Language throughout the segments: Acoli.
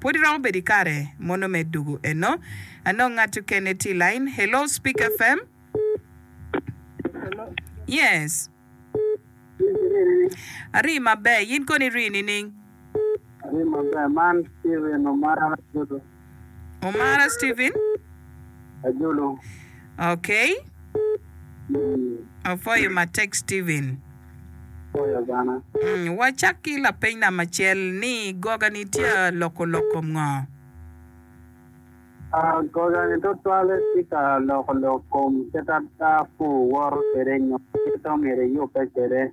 Pwod iromo bedo ikare mono me dugu eno. Anongo ngat okene tye ilain. Hello speak FM. Yes. Ari maber, yin kono iri nining? Ari maber, man Steven Omara Jodo. Omara Steven? Ajolo. Okay. Apwoyo matek Steven. Apwoyo bene. Mm, wacak ki lapeny nam acel ni gogani tye loko lok kom ngo? Ah, gogani tutwalle tye ka loko lok kom kit ada pur woto kwede nyo kit omyero eyubbe kwede.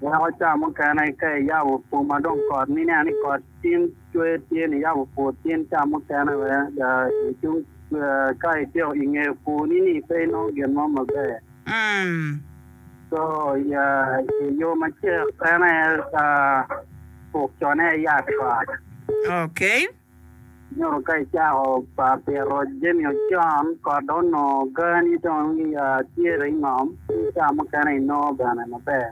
Weko ca mukene ka iyabo pur ma dong kot ni ineno ni kot tin cwer tye ni iyabo pur tin ca mukene wek ada icung ka ityeko inge purni ni pe inongo gin mo maber. Co yo macek en aye tuk cone aye yat kot. Nyuto ka icako pito jami ocon kot dong onongo gani dong tye dong ingom ki ka mukene inongo bene maber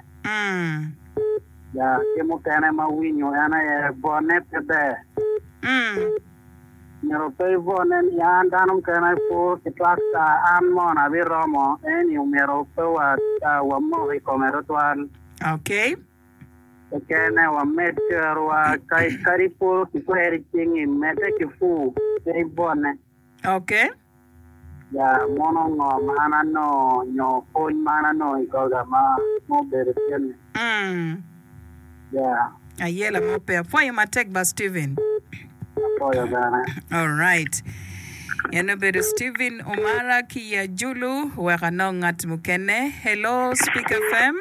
ki mukene ma awinyo en aye bwone pe ber myero pe ibwone ni an dano mukene puro ki twakta an mono abiromo eni omyero pe wamok ikome tutwal. Kekene wamed kerowa, kadi puro ki kwer i cingi, medde ki pur, pe ibone. Ok. Ya, mono ngo ma an anongo, nyo pwony ma an anongo i koga ma obedo cen-ni? Mm. Ya. Aye, lama pe. Apwoyo matek ba, Steven. Apwoyo bene. Alright. En obedo Steven Omara ki i Ajulu. Wek anong ngat mukene. Hello, Speak FM.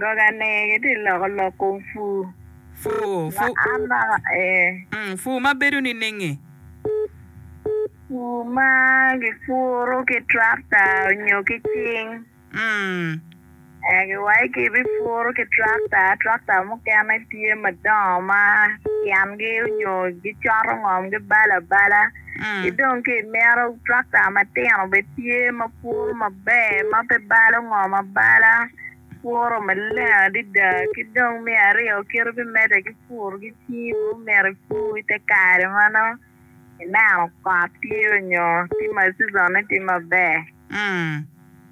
Goga ni giti loko lok kom fu. Fu, fu. Ma an naka ee. Mm, fu ma bedo ninenge? Fu ma gipuru ki trakta nyo ki cing. Mm. Ee, giwaco ki bipuru ki trakta, trakta mukene tye madongo ma tyengi onyo gicoto ngom gibalo abala. ki dong ki imito tractor matino bene tye ma puro maber ma pe balo ngom abala puro maleng adada ki dong me aryo kite me mede ki puro ki cing ma omyero ipur ite kare ma nongo ineno kot tye nyo tye ma season ne tye maber.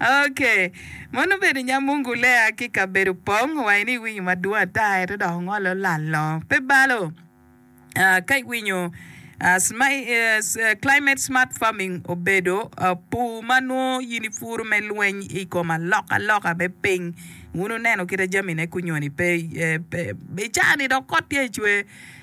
Ok. Mon obedo nyamungu lea ki kabedo pong wa ini iwinyo madwong ata eto dok ongole olalo. Pe balo. Ah, ka iwinyo ah, sma- eh, eh, climate smart farming obedo ah, pur ma nwo in ipuro me lweny i kom alokaloka me piny. Wun wuneno kita jamine kunyoni pe, eh, pe, i caa ni dok kot tye ecwer.